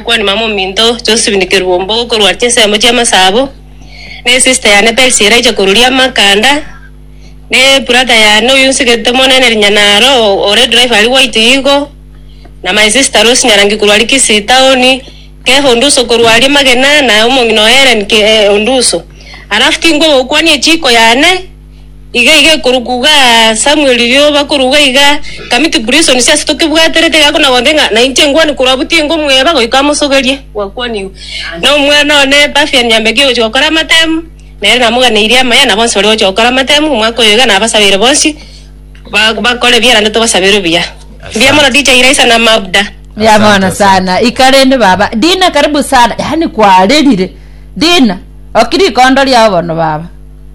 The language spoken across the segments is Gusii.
Omokwaani mama ominto Josephine Kerwombogo korwa chinsemo chi'amasabo, na esista yane Percy eraiche koruria amakanda, na ebrother yane oyio nsigete monene Rinyanaro ore driver aria gwaito igo, na my sister Rose Nyarangi korwa aria Kisii town, Kefa Onduso korwa aria Magina, na omong'ina oye Hellen Ke- eh, Onduso. Alafu tingwe gokwania echiko yane. Iga iga ekorukuga Samuel rirorio bakoruga iga Kamiti Prison siase tokebwaterete iga kona gonte ng'a nainche ngwane korwa butinyi ngomweba goika amosogerie gwakwanigwe na omwana one Pafian Nyambeki ogochia gokora amatemu nere namoganeirie amaya na bonsi baria bagochia gokora amatemu omwaka oyo iga nabasabeire bonsi ba- bakore ebiya naende tobasabeire obuya. Mbuya mono Teacher Iraisa na Mabda. Mbuya Asante, mono asante. sana ika rende baba dina karibu sana yaani kwarerire dina oki rikondo riao bono baba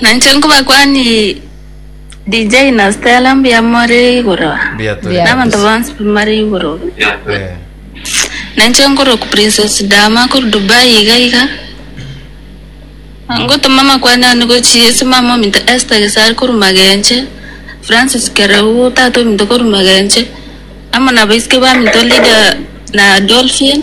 Nainche nkobakwanie DJ na Stella mbuya more igoro Mbuya tore Mbuya. nabanto kabisa. bonsi bamare igoro Eh, nainche nkoroku princess dama kuri dubai iga iga ngotoma amakwani ane gochia ase mama ominto esther gesari kori magenche francis kereu tata ominto kori magenche amo nabaisike baminto lida na dolphin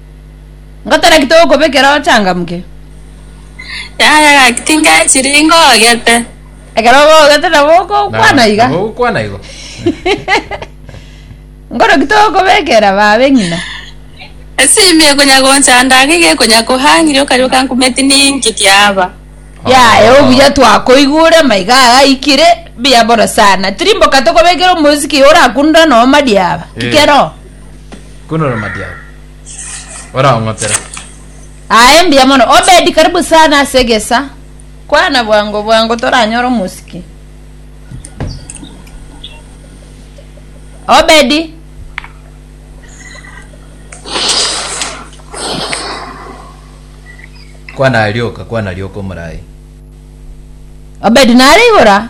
Ngotaraki togokobekera ochangamke. Yaya gaki tinkae chiringo ogete. Ekero ogogete nabo okokwana iga. Nabo okwana igo. Nkoroki togokobekera babe ng'ina. Esimi ekonya gonchanda iga iga ekonya kohang'iri okarioka nkumeti ninki kiaba. Yaya obuya twakoigure amaiga aya aikire mbuya bono sana. Tirimboka tokobekera omosiki orakundore noo madiaba. Ki keroo. Kunora madiao. Oraong'otera. Aye mbuya mono Obedi karibu sana ase egesa. Kwana bwango bwango toranyore omosiki. Obedi. Kwana arioka, kwana arioka omorai. Obedi nare igora.